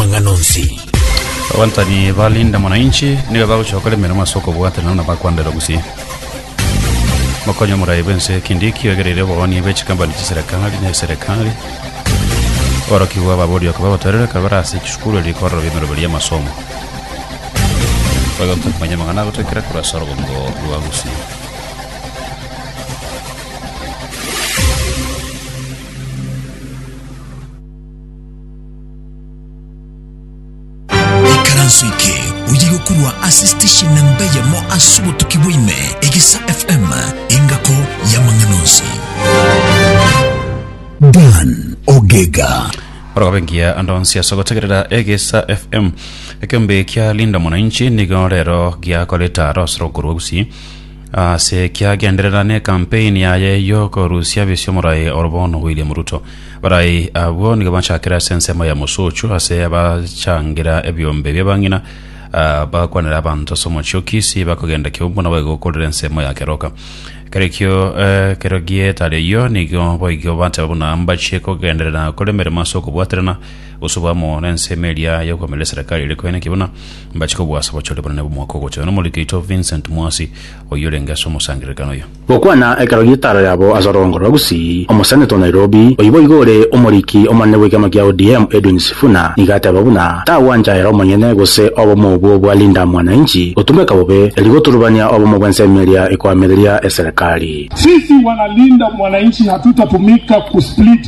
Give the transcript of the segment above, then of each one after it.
amang'ana onsi. Abantari ba Linda Mwananchi nigo bagochia gokora emeremo ase okobwatanera na bakwanderwa gusii. Mokonye omorai bw'ense Kindiki oegereire obogoni bwe chikampani chiserekari na eserekari. Aborokigwa babori okobua gotoererwa ekero bare ase chisukuru erio rikorerwa biamerobio ria amasomo. Oigotwe komanya amang'ana agotoikera korwa ase orogongo rwa Gusii. Ikaranso eke oye gokorwa ase station namba eyemo ase obotuki bwaime, Egesa FM, engako y'amang'ana onsi. Dan Ogega. orogobengia ando nsi ase gotegerera egesa fm ekeombe kia linda mwananchi nigo rero giakoreta arosire okorwa gusii Ase eki agenderera nekampeni yaye y'okorusia bisia omorai oro bono William Ruto. Barai abwo nigo bachakire ase ensemo ya Mosocho ase abachangira ebiombe bia bang'ina ah, bagakwanera abanto ase omochie o Kisii bakogenda Kiumbu nabo igo okorire ensemo ya Keroka. Kerekio eh, kerogie etari eyio nigo boigo bateba buna mbachie kogenderera kore emeremo ase okobwaterana Gose obe amo nensemo eria y'okoamerera eserekari ere koyana ki buna mbache kobua ase obochore bonene bw'omwaka ogocha. Nomorwoti oito Vincent Mwasi, oyio orenge ase omosangererekano oyio. Gokwana ekero gietaro yabo ase orogongo rwa Gusii, Omoseneta o Nairobi, oyio boigo ore omoriki omonene bw'ekiama kia ODM, Edwin Sifuna, nigo ateba buna tagwancha ere omonyene gose obomo obwo bwa Linda Mwananchi gotumeka bobe, erio goturubania obomo bw'ensemo eria ekoamereria eserekari. Sisi wana Linda Mwananchi hatutatumika ku split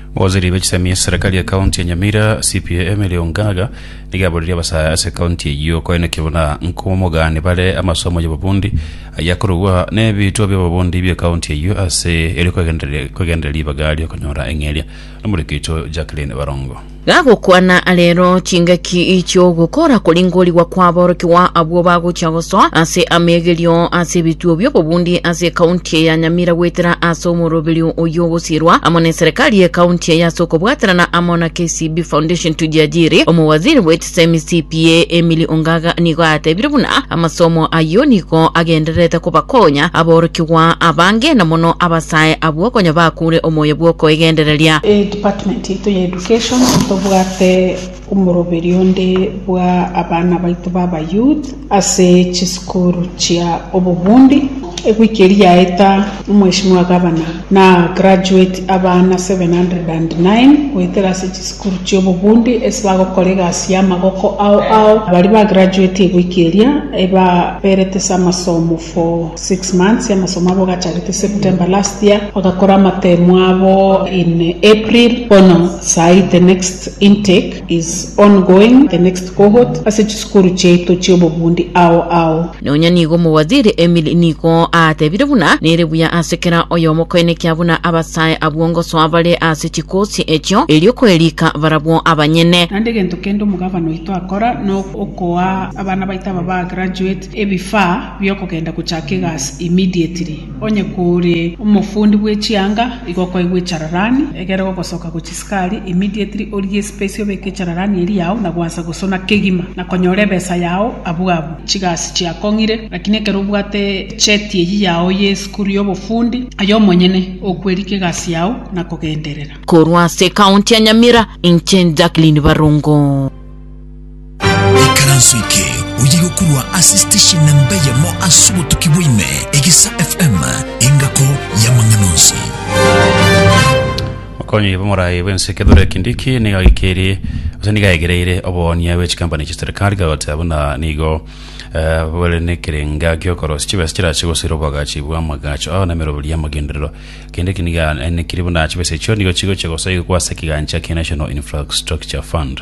Waziri be chisemi ya serikali ya county ya Nyamira CPA Emily Ongaga niga aboririe abasaya ase county eyio koenekio buna nkomogani bare amasomo y'obobundi ayia korogwa n'ebitwa by'obobundi bie county eyio ase erio kwegendereria kwegendereria ribaga ri'okonyora eng'eria nomoriki oito Jacqueline Barongo. Gagokwana arero chingaki chi'ogokora koringorigwa kw'aborokigwa abwo bagochia gosoa ase ameegerio ase ebituo bi'obobundi ase ekaunti ya Nyamira goetera ase omoroberio oyio sirwa amo neserikali ye county eye ase okobwaterana amo na KCB Foundation Tujiajiri. Omowaziri bwechisemi CPA Emily Ongaga nigo atebire buna amasomo ayio nigo agendererete kobakonya aborokigwa abange na mono abasae abwo konya bakure omoyo bwokoegendereria. Department yaito ya Education tobwate Omoroberi onde bwa abana baito b'abayouth ase chisukuru chia obobundi. Ewiki eria yaeta, Mweshimiwa Gavana na graduate abana 709 goetera ase chisukuru chia obobundi ase bagokora egasi y'amagoko ao ao. Baria ba graduate ewiki eria ebaberete ase amasomo. for six months amasomo abo gacharete September last year bagakora amatemo abo in April bono saii the next intake is ongoing the next cohort ase chisukuru chiaito chiobobundi ao ao. Nonya nigo Omowaziri Emily nigo aatebire buna nere buya ase kera oyomo koenekia buna abasae abwo ngosoa bare ase chikosi echio, erio koerika barabwo abanyene. Naende egento kende omogabana oito akora na okoa abana baito aba ba graduate ebifaa biokogenda gocha kegasi immediately, onye kore omofundi bwe chianga igo okoegwa echararani egere gogosoka gochia sukari immediately orie espesi obeke echararani eria yao na gwansa gosona kegima na konyora ebesa yao abwo abwo chigasi chiakong'ire lakini ekero obwate cheti eyio yao ye esukuru ya obofundi aye omonyene okweria kegasi yao na kogenderera. Korwa ase ekaunti ya Nyamira, inche Jacqueline Barongo. Ekaranso eke oye gokorwa ase station namba eyemo ase obotuki bwaime, Egesa FM, engako y'amang'ana onsi. Okonyi bw'omorai bw'ense Kithure Kindiki nigo agikerie ase nigo aegereire obohonia bwe chikampani chia serikali kagoteba buna nigo eh, bore nekerenga giokorosia chibesa chirache gosira obwagachi bw'amagacho ao na emeroberi y'amagenderero Kindiki nigo anenekirie buna chibesa echio nigo chigochia gosaigwa ase ekigancha kia National Infrastructure Fund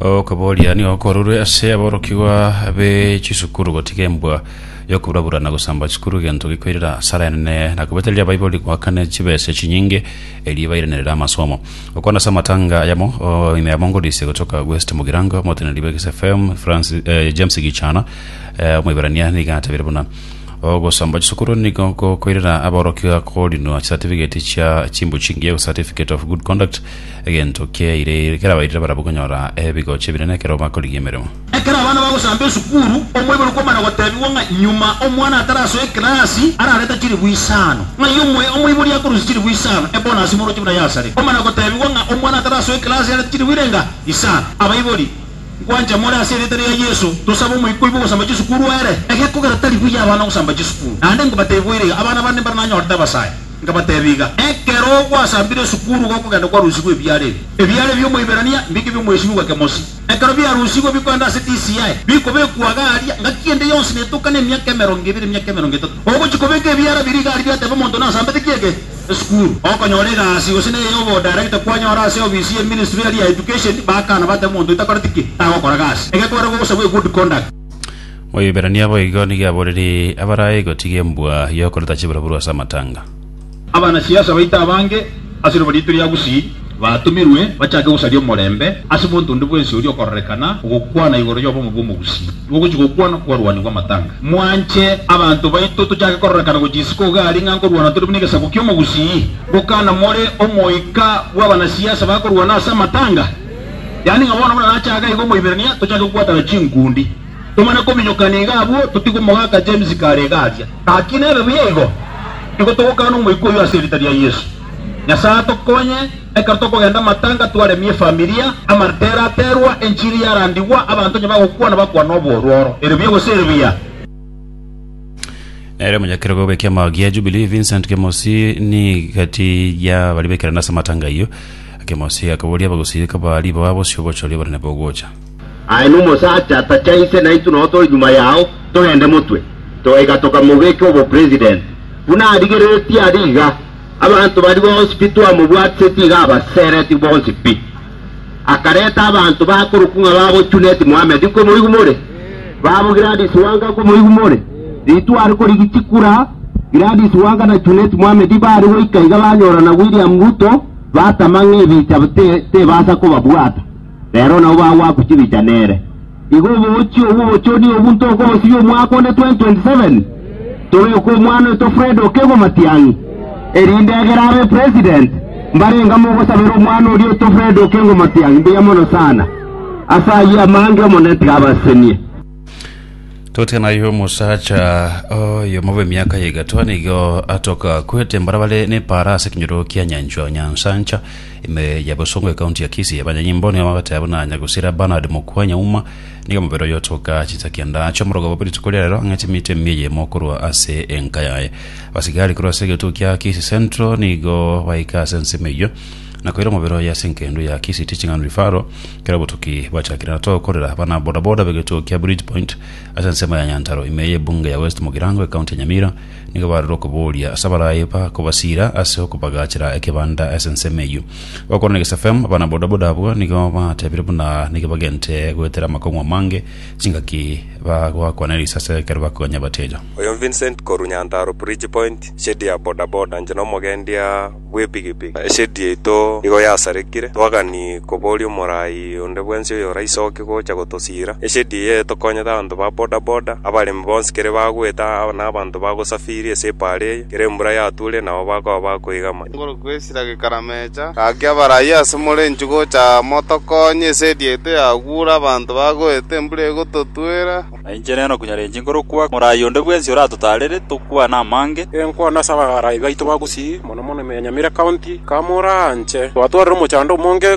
Okoboria nigo korurwe ase aborokigwa be chisukuru gotiga embwa yokoburabura na gosamba chisukuru egento gikoirera asara enene na kobetereria Baibori goakana chibese chinyinge erio bairanerere amasomo. Okwana ase amatanga ayamo o, ime amo ngodise gotoka West Mugirango omoteneneri bwa Kis FM Francis, eh, James Gichana eh, omoiberania niga atabire buna ogosamba chisukuru nigo gokoirera aborokigwa korinwa chisatifigeti chia chimbuchingi ego certificate of good conduct Egento kiaire kerabairire barabwo konyora ebigocha ebinene ekero bakorigia emeremo. Ekero abana bagosamba esukuru, omoibori kwamana gotebigwa ng'a nyuma omwana atarasoe ekerasi ararete chilifu isano. Ng'ai omoe omoibori akorusia chilifu isano ebonasi moroche buna yasare? Kwamana gotebigwa ng'a omwana atarasoe ekerasi arete chilifu irenga isano. Abaibori, nkwancha more ase erieta ria Yeso, tosabe omoika oibwe ogosamba chisukuru ere egekogera tari buya abana ogosamba chisukuru. Naende inkobatebia boireiga, abana bande mbare nanyorete abasae. Nkabateebia iga, Ekero gwasambire esukuru gokogenda kwarusigwa ebiara ebi ebiara bi'Omoiberania, mbeke ebi'Omoisiru gake mosi. Ekero biarusigwe bikoenda ase DCI, bikobekwa iga aria, ngaki ende yonsi netoka nemiaka emerongo ebere, emiaka emerongo etato. Ogochia kobeka ebiara biria iga aria biateba omonto nasambete ki eke? Esukuru. Okonyora egasi gose neye y'obodirector kwanyora ase eofisi ye ministry eria ya Education, bakana bateba omonto oyo takoreti ki? Tagokora gasi. Egekogera gogosabwa egood conduct. Oyoiberania boigo nigo aborerie abarae gotiga embwa y'okoreta chiburoburu ase amatanga. Abanasiasa baito abange ase riroba riaito ria Gusii batomirwe bachake gosaria omorembe ase monto onde bwensi oria okororekana ogokwana igoro y'obomo bw'Omogusii ogochia gokwana kwarwanigwe amatanga. Mwanche abanto baito tochake kororekana gochia isiko iga aria ng'a nkorwana tore buna egesaku ki'Omogusii, bokana more omoika bw'abanasiasa bakorwana ase amatanga. Yaani ng'a bono buna nachaka iga Omoiberania, tochake gokwanana chinkundi, tomane kominyokana iga abwo, totige omogaka James kare iga aria. Gaki nebe buya igo, nigo togokana Omoika oyio ase erieta ria Yeso. Nyasae atokonye, ekero tokogenda amatanga twaremie efamilia, amarita eraterwa, enchiri yarandigwa, abanto onye bagokwana bakwane oboorwa oro. Ere buya gose ere buya? Nere omonyakerwa bw'ekiama gia Jubilee Vincent Kemosi nigati ya baria bekerana ase amatanga ayio Akemosia akaboria abagosireka baaria baba bosio gocha oria bare nabo ogocha. Aye nomosacha tachaise naintwe nao tore nyuma yao togende motwe. Togaika tokamobeka obopresident. Buna arigereretie aria iga, abanto baria bonsi pi twamobwatiseti iga abasereti bonsi pi. Akareta abanto bakorokwa ng'a babochuneti Mohammed komoigumore, babo Gladys Wanga komoigumore, ritware korigichi kura, Gladys Wanga na Junet Mohammed bare goika iga banyorana William Ruto, Batama ng'a ebicha tebasa kobabwata, rero nabo bagwakwa chibicha nere. Igo oboochi obwo obochoni obwo ntokobosibia omwaka onde 2027, tobeke omwana oito Fred Okego Matiang'i, erinde egere abe president. Mbarenga mogosabera omwana oria oito Fred Okengo Matiang'i mbuya mono sana. Ase ayio amange Omonene tiga abasesenie. Totya naye omosacha oyo mobe miaka ya egatwa nigo atoka kwete mbara bare nepara ase kinyoro kia nyanchwa nyansancha ime ya bosongo ekaunti ya kisi abanyanyi mbo nigo bagateba buna nyagusira bernard mokua nyauma nigo mobere oyo otoka chinsa kianda acho omorogo bobe rituko riarero ang'ete emito emiya eyemo korwa ase enka yaye abasigari korwa ase egetuko kia kisi central nigo baika ase ensemo eyio na koira omobere oye ase engendu ya Kisii Teaching and Referral, kera obotuki bachakire na tokorera abana bodaboda b'egetugo kia Bridge Point ase ensemo ya Nyantaro ime y'ebunge ya West Mugirango ekaunti ya Nyamira nigo barorire okoboria ase abarayi ba kobasiira ase okobagachera ekebanda ase ensemo eyio. Gokwana na Gisa FM, abana bodaboda abwo nigo batebire buna nigo bagente goetera amakong'u amange chingaki bagwakwana erisa ase ekero bakonya abateja. Oyo Vincent korwa Nyantaro Bridge Point, shedi ya bodaboda, inche na omogendia. bw'epigipigi. Eshedi yaito nigo yasarekire, twagani koboria omorai onde bwensi oyoraisoke gocha gotosiira. Eshedi eye etokonyete abanto ba bodaboda, abaremi bonsi kere bagwete na abanto bagosafiri ase epaara eye kere embura yatuure nabo bakoba bakoigama. Igoro kwesira gekaramecha. Gaki abarai ase more inchuo gocha motokonye, eshedi yaito yaguure, abanto bagwete, embura egototuera. Na inche nere nokonyarenche nkorokwa, moraai onde bwensi oratotaarere, tokwane amange. Enkwana ase abagarai baito ba gusii, mono mono Emenyamire County, kamoraanche, twatwarire omochando omonge.